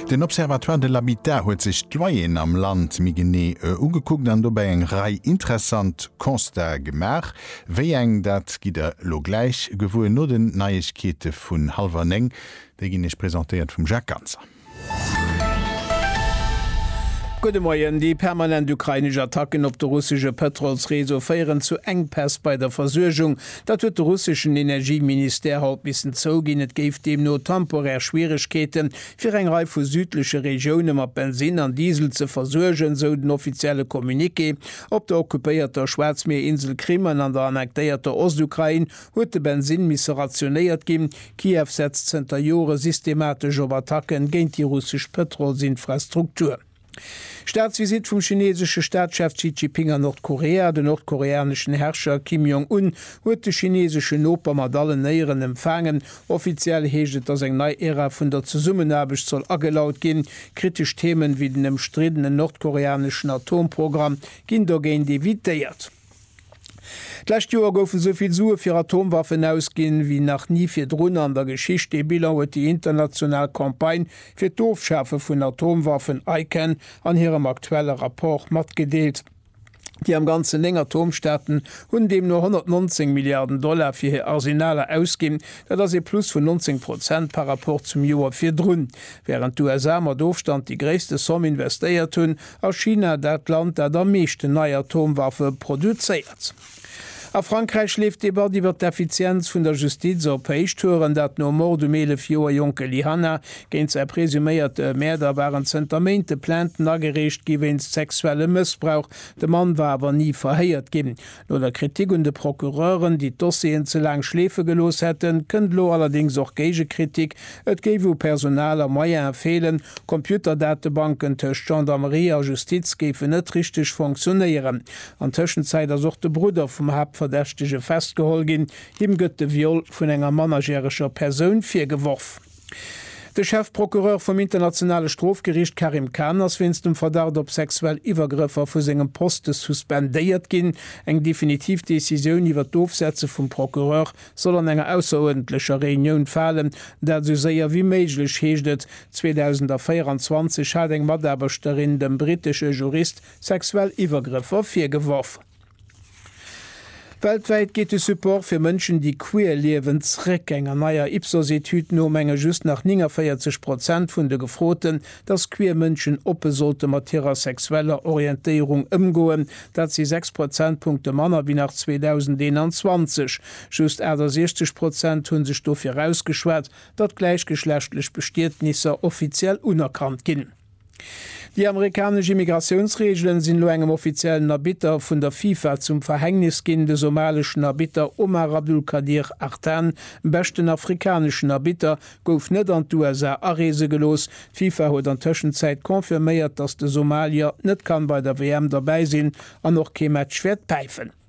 Den Observatoire de l'habitat huet sech d'Loyeren am Land méi genee ugekuckt an dobäi eng Rei interessant Constatë gemaach. Wéi eng, dat gitt Der elo gläich gewuer no den Neiegkeete vun hallwer néng. Déi ginn Iech presentéiert vum Jacques Ganser. Gudde Moien. Déi permanent ukrainesch Attacken op de russesche Pëtrolsreseau féieren zu Enkpäss bei der Versuergung. Dat huet de russeschen Energieministère haut missen zouginn. Et géif deemno temporär Schwieregkeeten, fir eng Rei vu südleche Regioune mat Bensinn an Diesel ze versuergen, esou den offizielle Communiqué. Op der occupéierter Schwaarzmierinsel Krim an an der annektéierter Ostukrain huet de Bensinn misse rationéiert ginn. Kiew setzt zënter Jore systematesch op Attacke géint déi russesch Pëtrolsinfrastruktur. Staatsvisitt vum chineesesche Staatschef Xi Jiping an Nordkorea Den nordkoreaneschen Herrscher Kim Jong Un huet de chineeseschen Noper mat allen Éieren empfaangen. Offiziell heescht et, datt eng nei Ära vun der Zesummenaarbecht soll agelaut ginn. Kritesch Themen, wéi den ëmstriddenen nordkoreaneschen Atomprogramm, ginn dogéint evitéiert. D'lescht Joer goufen esou vill Sue fir Atomwaffen ausginn, wéi nach ni virdrun an der Geschicht. Dee Bilan huet déi international Campagne fir d'Ofschafe vun Atomwaffen, ICAN, an hirem aktuelle Rapport matgedeelt. Déi am Ganzen néng Atomstaaten hunn deemno 119 Milliarden Dollar fir hir Arsenaler ausginn. Dat ass ee Plus vun 19 Prozent par Rapport zum Joer virdrun. Wärend d'USA mat Ofstand déi gréisste Somm investéiert hunn, A China, dat Land, dat am meeschten nei Atomwaffe produzéiert. A Frankräich leeft d'Debatt iwwer d'Effizienz vun der Justiz op Héichtouren. Dat nom Mord um 11 Joer jonke Lee Hanna. Géint säi presuméiert Mäerder waren zënter Méinte Plainten agereecht gi wéinst sexuellem Mëssbrauch. De Mann war awer ni verhéiert ginn. No der Kritik un de Procureuren, déi d'Dossieren ze laang schleefe gelooss hätten, kënnt elo allerdéngs och Géigekritik, et géif u Personal a Moyene feelen, Computerdatebanken tëscht Gendarmerie a Justiz géifen net richteg fonctionnéieren. An Tëschenzäit ass och de Brudder vum Haaptverdächtege festgeholl ginn. Him gëtt de Viol vun enger mannerjäreger Persoun virgeworf. De Chefprocureur vum Internationale Strofgeriicht Karim Khan ass wéinst dem Verdacht op sexuell Iwwergrëffer vu sengem Poste suspendéiert ginn. Eng definitiv Decisioun iwwer d'Ofsetze vum Procureur soll an enger ausseruerdentlecher Reunioun falen, dat esou séier wéi méiglech, heescht et. 2024 hat eng Mataarbechterin dem brittesche Jurist sexuell Iwwergrëffer virgeworf. Weltwäit geet de Support fir Mënschen, déi queer liewen, zréck. Enger neier Ipsos-Etüd no menge just nach 49 Prozent vun de Gefroten, datt queer Mënschen oppe sollte mat hirer sexueller Orientéierung ëmgoen. Dat si 6 Prozentpunkte manner wéi nach 2021. Just 68 Prozent hu sech dofir ausgeschwat, datt gläichgeschlechtlech Bestietnisser offiziell unerkannt ginn. Déi amerikanesch Immigratiounsreegelen sinn elo engem offiziellen Arbitter vun der FIFA zum Verhängnis ginn. De somaleschen Arbitter Omar Abdulkadir Artan, beschten afrikaneschen Arbitter, gouf net an d'USA areese gelooss. D'FIFA huet an Tëschenzäit confirméiert, datt de Somalier net kann bei der WM derbäi sinn an och kee Match wäert päifen.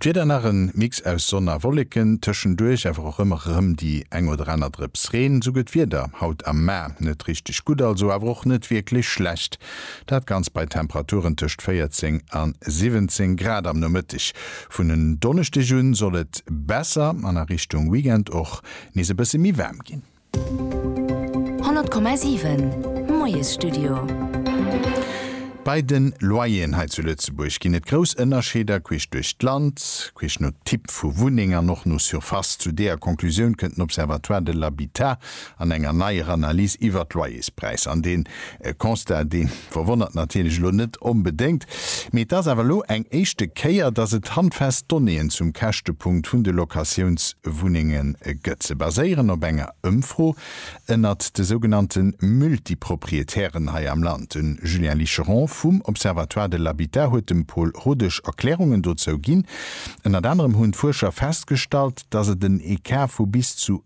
D'Wieder nach en Mix aus Sonn a Wolleken, tëschenduerch awer och ëmmer erëm déi eng oder aner Drëps Reen. Esou gëtt d'Wieder haut am Maer net richteg gutt, also awer och net wierklech schlecht. Dat Ganzt bei Temperaturen tëscht 14 a 17 Grad. Am Nomëtteg vun en Donneschdeg un soll et besser an a Richtung Weekend och nees e bësse méi waarm ginn. 100,7 Moiesstudio. Bei de Loyeren hei zu Lëtzebuerg ginn et grouss Ënnerscheeder queesch duerch d'Land, queesch no Typ vu Wunneng an och no Surface. Zu deeër Conclusioun kënnt den Observatoire de l'habitat an enger neier Analys iwwert d'Loyerspräisser. An dee E Constat, dee verwonnert natierlech elo net onbedéngt, mee et ass awer elo eng éischte Kéier, dass et handfest Donnéeën zum Käschtepunkt vun de Locatiounswunnenge gëtt. Se baséieren op enger Ëmfro ënnert de sougenannte Multipropriétairen hei am Land. De Julien Licheron vum Observatoire de l'habitat huet dem Paul Rodesch Erklärungen dozou ginn. Ënnert anerem hunn d'Fuerscher festgestallt, dass et en Ecart vu bis zu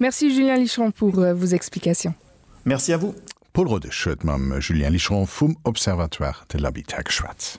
Merci Julien Licheron pour vos explications. Merci à vous. D'Paul Rodesch huet mam Julien Licheron vum Observatoire de l'habitat geschwat.